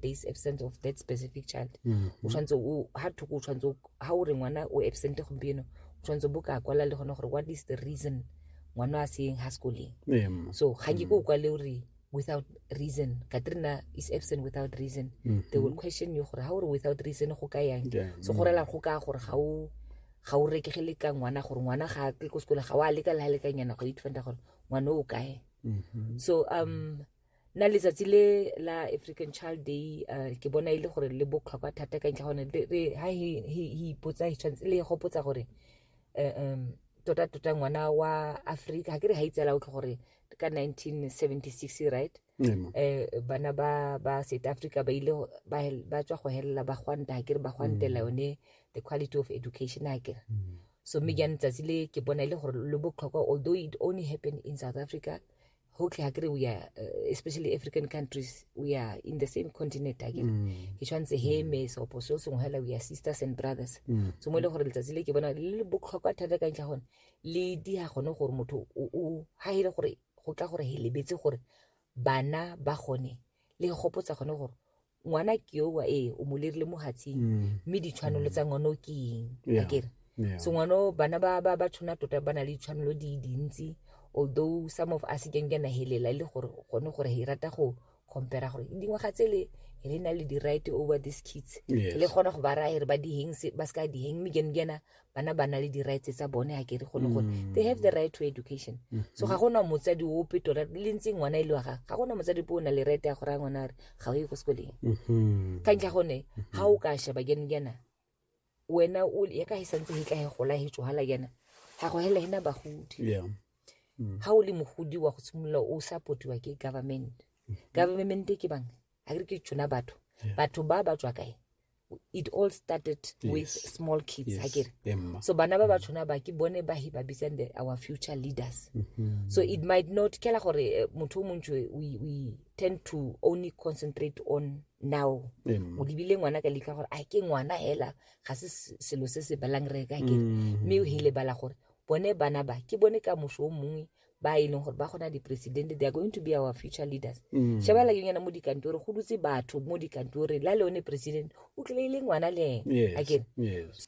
days absent of that specific child mm-hmm. o tshwanetse o ha thoko o tshwanetse ha o re ngwana o absent gompieno o tshwanetse bo ka kwala le gone gore what is the reason ngwana a seyeng ha sekoleng so ga ke ko o kwale o re without reason katrina is absent without reason mm -hmm. they will mm-hmm. question you gore ga o re without reason go ka yang yeah. so go rela go ka gore ga o ga o rekegele ka ngwana gore ngwana ga a tle ko sekole ga o a leka le ga lekanyana go itfanta gore ngwana o kae mm-hmm. so um na letsatsi le la african child day uh, ke bona e le gore le botlhokwa thata ka ntlha gone ha ipotsa tshwanetse le gopotsa gore eh, um tota tota ngwana wa africa ga ke re ga itsela o tlho gore ka 1976 right um bana ba ba south africa ba ile ba tswa go helela ba gwanta ga ke re ba gwantela mm. yone the quality of education ga kere mm. so mme jane tsatsi le ke bona e le gore le botlhokwa although it only happened in south africa okay akere we are uh, especially african countries we are in the same continent akere mm. ke tshwanetse heme sopo so sengwe hela we are sisters and brothers mm. so mo e le gore letsatsi le ke bona le botlhokwa thata ka ntlha gone le di ya gone gore motho o ha ile gore go tla gore he lebetse gore bana ba gone le gopotsa gone gore ngwana ke yo wa ee o mo lerile mo hatsing mm. mme ditshwanelo mm. tsa ngwana o ke eng a kere so ngwana bana ba ba ba tshwana tota ba na le ditshwanelo di dintsi although some of us keng kena helela e le gore gone gore he rata go compare gore dingwaga tse le re na le di-right over these kids le kgona go ba raya re ba diheng ba se ka diheng mme kene kena bana ba na le di-rights tsa bone ga kere gone gone mm. they have the right to education mm-hmm. so ga gona motsadi ope tota le ntse ngwana e le wa ga ga gona motsadi ope o na le right ya gore a ngwana a re ga o ye ko sekoleng mm-hmm. ka ntlha gone ga mm-hmm. o ka sheba jane jana wena ya ka e santse e tla e gola e tswala jana ga go hela ena bagodi ga mm. o le mogodi wa go simolola o supportiwa ke government government ke bang a re ke tsona batho batho ba ba tswa kae it all started yes. with small kids yes. akere so bana ba ba tshwana ba ke bone ba he ba bitsang the our future leaders mm -hmm. so it might not kela gore eh, motho o montsi we, we tend to only concentrate on now o lebile ngwana ka letlha gore a ke ngwana hela ga se selo se se balang re ka kere mm-hmm. mme o he lebala gore bone bana ba ke bone ka moso o mongwe ba e leng gore ba gona dipresidente they are going to be our future leaders mm. sheba la yonyana mo dikantore go dutse batho mo dikantoreng la le one president o tlile e le ngwana le ena again yes.